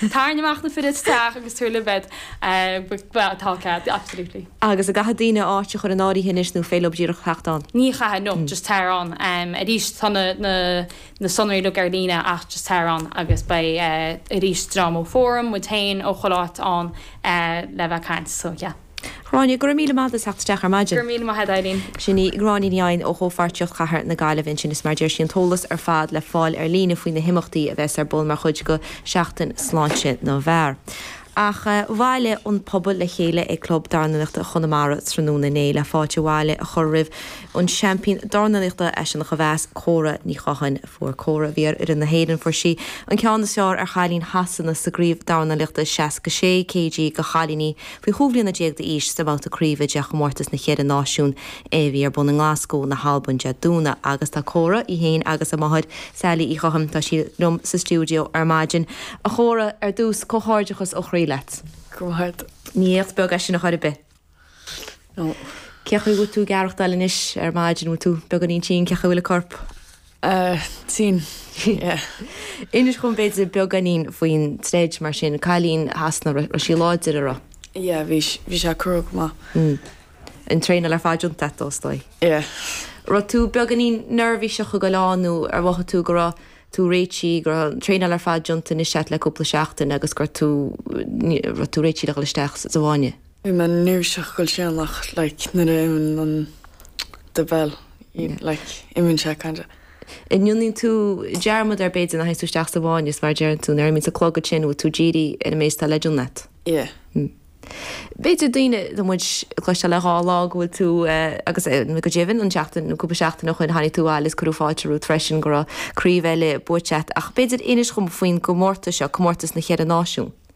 Tarraing amach na fir isteach agus tabhair libh iad. Bhuel, tá cead, absolutely. Agus an gcaithfidh daoine áit a chur in áirithe anois nó an féidir leob díreach a theacht ann? Ní chaithfidh, no, just tar ann. Arís, tá na sonraí uilig ar líne ach just tar ann agus beidh, arís, dream ó Fóram, muid féin, ó chuile áit ann le bheith ag caint, so yeah. Gráinne, Go raibh míle maith a'd as theacht isteach ar maidin. Go raibh míle maith a'd Eileen. Sin í Gráinne Ní Eidhin ó Chomhpháirtíocht Chathair na Gaillimhe ansin is mar a deir sí an t-eolas ar fad le fáil ar líne faoi na himeachtaí a bheas ar bun mar chuid de Sheachtain Sláinte na bhFear. Ach bhailigh an pobal le chéile ag Club Dornálaíochta Chonamara tráthnóna inné le fáilte abhaile a chur roimh an seaimpín dornálaíochta as Seanachomheas, Córa Ní Chatháin. Fuair Córa, a bhí ar fhoireann na hÉireann, fuair sí an ceann is fearr ar chailín Shasana sa gcraobh dornálaíochta 66 kg do chailíní, Faoi chúig bhliana déag d'aois, sa bhabhta craoibhe de Chomórtas na Cheithre Náisiún é a bhí ar bun i nGlaschú na hAlban Dé Domhnaigh agus tá Córa, í féin agus a máthair, Sally Uí Chatháin, tá sí liom sa stiúideo ar maidin. A Chóra, ar dtús, comhghairdeachas ó chroí leat. Go raibh maith a'd. Ní éacht beag é sin a chor ar bith. No. Cén chaoi a bhfuil tú ag aireachtáil anois ar maidin, an bhfuil tú beagáinín tinn, cén chaoi a bhfuil an corp? Tinn, yeah. Inis dhom b'fhéidir beagáinín faoin troid mar sin. Cailín Shasana, raibh sí láidir a raibh? Yeah, bhí, bhí sé crua go maith. Mm. An traenáil ar fad déanta a'd is dóigh. Yeah. Raibh tú beagáinín neirbhíseach ag goil ann nó ar mhothaigh tú go raibh tú réitithe, go raibh an traenáil ar fad déanta anois a'd le cúpla seachtain agus go raibh tú, raibh tú réitithe le dhul isteach sa bhfáinne? Bhí mé neirbhíseach ag goil isteach like nuair a imíonn an the bell like imíonn sé kind of. Déanann tú dearmad air b'fhéidir nuair a théanns tú isteach sa bhfáinne is mar a deireann tú nuair a imíonns an clog ansin go bhfuil tú dírithe ar an méid is atá le déanamh a'd. Yeah. B'fhéidir daoine tá muid ag cloisteáil le dhá lá go bhfuil tú agus nó go deimhin an seachtain nó cúpla seachtain ó shoin tháinig tú abhaile is cuireadh fáilte romhat freisin go raibh craobh eile buaite agat ach b'fhéidir inis dhom faoin gcomórtas seo, comórtas na cheithre náisiún.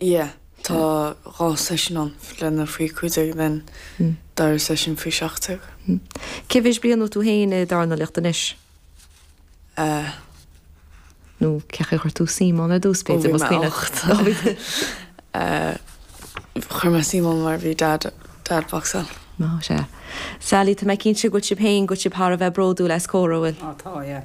Yeah, tá dhá seisiún ann, le na faoi cúig déag then dara seisiún faoi seacht déag. Cé mhéad bliain a bhfuil tú féin ag dornálaíocht anois? Eh. nó cé chaoi chuir tú suim ann ar dtús, b'fhéidir, más cuimhin leat? Ó, bhí mé ocht. Eh, chuir mé suim ann mar bhí dad, dad ag boxáil. Ó, sea. Sally, tá mé cinnte go bhfuil sibh féin, go bhfuil sibh thar a bheith bródúil as Córa, an bhfuil? Ó, tá, yeah.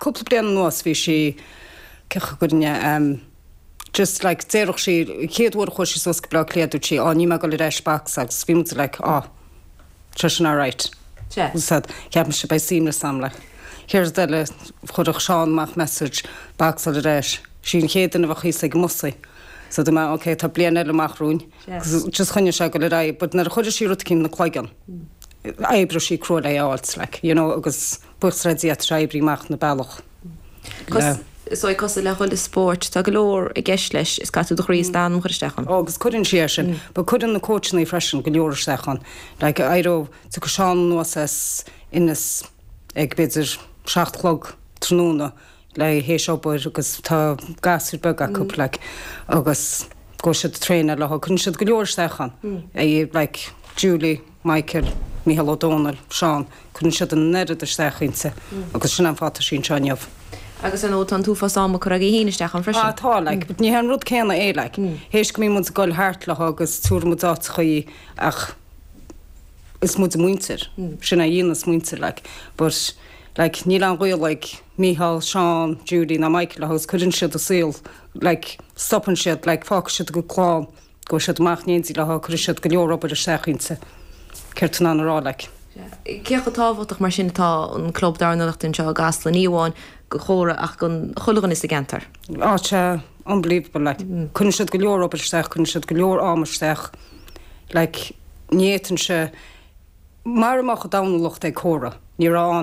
cúpla bliain anuas bhí sí cioch againne em just like déarfadh sí an chéad uair a chuaigh sí suas go Bleá Cliath dúirt sí 'Á níl mé ag dul ar ais box' agus bhí muid like 'Á tá sin alright' yeah agus séard a cheap mise beidh suaimhneas a'm like chéad rud eile chuirfeadh Seán amach message box dul ar ais sí an chéad duine a bheadh thíos ag an mbusaí so dúirt mé 'Ok tá bliain eile amach romhainn' agus just choinnigh sí ag dul ar aghaidh but nuair a chuireadh sí rud eicínt ina cloigeann d'oibreodh sí crua le a fháilt like you know agus ag oibriú amach na bealach. Is é cosúil le chuile spórt, tá go leor i gceist leis, is caithfidh tú do chroí is d'anam a chur isteach ann. Ó, agus cuireann sí é sin, but cuireann na cóitseannaí freisin go leor isteach ann. Like, éireoidh, tiocfaidh Seán anuas as Inis ag, b'fhéidir, seacht a chlog tráthnóna, like, théis obair, agus tá gasúir beaga acu, like, agus go bhfuil siad ag traenáil léi, cuireann siad go leor isteach ann, like Julie. Michael, Mícheál Ó Domhnaill, Seán, cuireann siad an oiread isteach inti agus sin é an fáth tá sí anseo inniu. Agus ar ndóigh tá an t-uafás ama curtha aige féin isteach ann freisin. Ah tá, like, but ní hé an rud céanna é, like, théis go mbíonn muid ag goil thart léi agus tabharann muid áiteachaí í ach is muid a muintir, sin é a dhéananns muintir, like, but, like, níl aon ghaol ag Mícheál, Seán, Judy ná Michael léi agus cuireann siad a saol, like, stopann siad, like, fágfaidh siad a gcuid clann. Gabhfaidh siad amach in éindí léi agus cuirfidh siad go leor obair isteach inti. Céard atá mé in ann a rá like? Cé chomh tábhachtach mar sin atá an club dornálaíocht anseo i gCasla, ní amháin do Chóra ach do chuile dhuine sa gceantar? Á tá sé unbelievable like. Cuireann siad go leor obair isteach, cuireann siad go leor ama isteach like. Ní fhéadfainnse, mara mbeadh an dornálaíocht ag Córa, ní raibh ann